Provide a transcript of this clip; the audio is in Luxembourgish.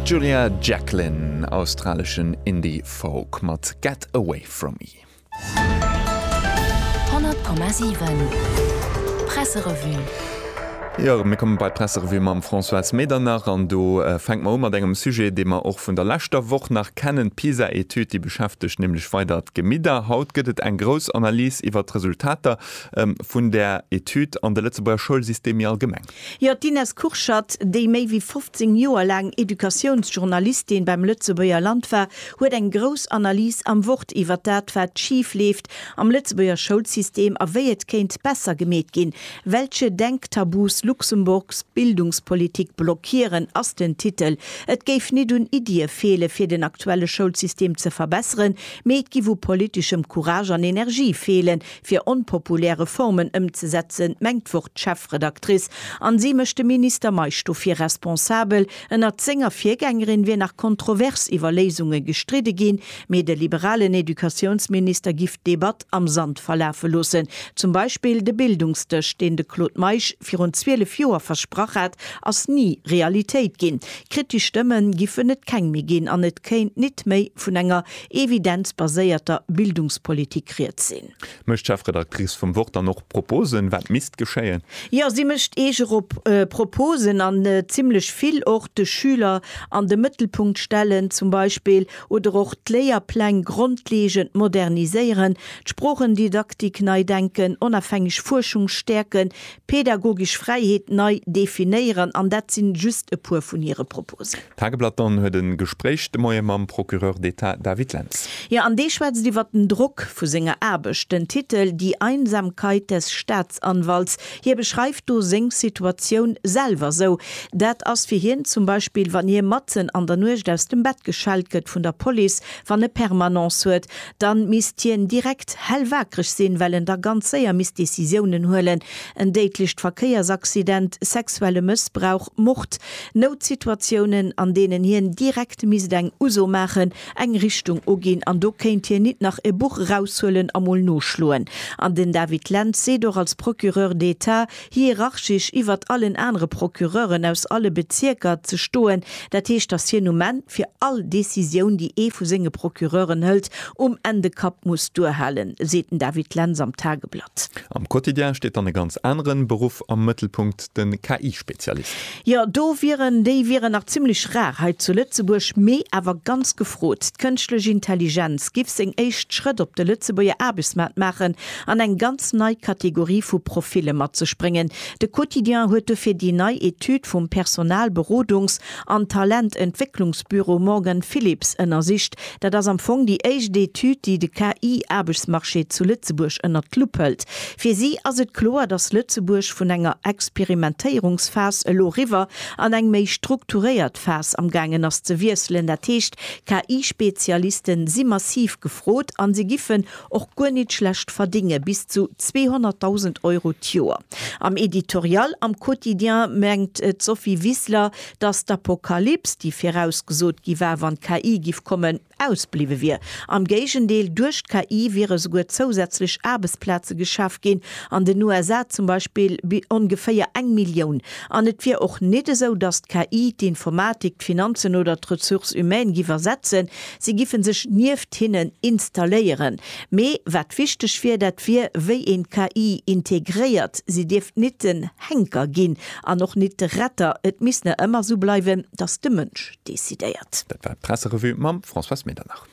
D'Julia Jacklin, australeschen Indie Folk mat Get Away From Me. 100,7 Presserevue. Jo, mir kommen bei d'Presserevue mam Françoise Medernach an do fänke mer u mat engem Sujet, dee mer och vun der leschter Woch nach kennen. D'PISA-Etüd, déi beschäftegt nämlech weider d'Gemidder. Haut gëtt et eng grouss Analys iwwert d'Resultater vun där Etüd an de Lëtzebuerger Schoulsystem méi allgemeng. Jo, d'Ines Kurschat, déi méi wéi 15 Joer laang Educatiounsjournalistin beim Lëtzebuerger Land war, huet eng grouss Analys am Wort iwwer dat, wat schif leeft am Lëtzebuerger Schoulsystem a wéi et kéint besser gemeet ginn. Welche Denktabus Luxemburgs Bildungspolitik blockieren? ass den Titel. Et géif nit un Iddië feele fir den aktuelle Schoulsystem ze verbesseren, mee et giff u politischem Courage an Energie feelen, Fir onpopulär Reformen ëmzesetzen, mengt d'Wort d'Chefredaktrice, an si mécht de Minister Meisch dofir responsabel. Ënnert senger Virgängerin wier nach kontrovers iwwer Léisunge gestridde ginn, mee de liberalen Educatiounsminister giff d'Debatt am Sand verlafe loossen. Zum Beispill de Bildungsdësch, deen de Claude Meisch virun 12 Joer versprach hat, ass ni Realitéit ginn. Kritesch Stëmme giffen et keng méi ginn an et kéint nit méi vun enger evidenzbaséierter Bildungspolitik rieds sinn. Mécht d'Chefredactrice vum Wort dann och Proposen, wat misst geschéien? Jo, si mécht eege Proposen, an zimlech vill och. De Schüler an de Mëttelpunkt stellen zum Beispill oder och d'Léierpläng grondlegend moderniséieren, d'Sprochendidaktik nei denken, onafhängeg Fuerschung stäerken, Pedagogisch Fräiheet nei definéieren, an dat si just e puer vun hire Proposen. D'Tageblatt dann huet e Gespréich de Moie mam Procureur d'État David Lentz. Jo, an dee schwätzt iwwert den Drock vu senger Aarbecht. Den Titel Die Einsamkeit des Staatsanwalts, hie beschreift do seng Situatioun selwer sou, Dat ass fir hien zum Beispill, wann hie matzen an der Nuecht aus dem Bett geschellt gëtt vun der Police, wann e Permanence huet, Dann misst hien direkt hell waakreg sinn, well en da ganz séier misst Décisiounen huelen, en déidlecht Verkéiersaccident, sexuelle Mëssbrauch, Mord, Noutsituatiounen an deenen hien direkt misst eng Uso maachen, eng Richtung uginn an do kéint hien nit nach e Buch eraushuelen a mol noschloen. An den David Lentz seet och als Procureur d'Etat, hierarchisch iwwert allen anere Procureuren aus alle Bezierker ze stoen, dat heescht, dass hien um Enn fir all Décisioun, déi ee vu senge Procureuren hëlt, um Enn de Kapp muss duerhalen, seet den David Lentz am Tageblatt. Am Quotidien steet dann e ganz anere Beruff am Mëttelpunkt, de KI-Spezialist. Jo, do wieren, déi wieren nach zimlech rar hei zu Lëtzebuerg, mee awer ganz gefrot. D'Kënschtlech Intelligenz giff seng éischt Schrëtt op de Lëtzebuerger Aarbechtsmaart maachen, an eng ganz nei Kategorie vu Profile mat sech bréngen. De Quotidien huet dofir déi nei Etüd vum Personalberodungs an Talententwécklungsbüro Morgan Phillips ënnersicht. Dat ass am Fong déi éischt Etüd, déi de KI-Aarbechtsmarché zu Lëtzebuerg ënnert d'Lupp hëlt. Fir si ass et kloer, datt Lëtzebuerg vun enger Experimentéierungsphas elo eriwwer an eng méi strukturéiert Phas amgaangen ass ze wiesselen. Dat heescht, KI-Spezialiste si massiv gefrot a se giffen och guer nit schlecht verdinge, bis zu 200.000 Euro d'Joer. Am Editorial am Quotidien mengt d'Sophie Wissler, datt d'Apokalyps, déi virausgesot gi war, wann d'KI giff kommen, ausbliwwe wier. Am Géigendeel, duerch d'KI wiere souguer zousätzlech Aarbechtsplaze geschaf ginn, an den USA zum Beispill ongeféier eng Millioun. An et wier och nit esou, datt d'KI d'Informatik, d'Finanzen oder d'Ressources humaines giff ersetzen, Si giffen sech nieft hinnen installéieren. Mee wat wichteg wier, dat wier, wéi een d'KI integréiert. Si dierft nit den Henker ginn an och nit de Retter. Et misst ne ëmmer sou bleiwen, datt de Mënsch decidéiert. Dat war d'Presserevue mam Françoise Medernach.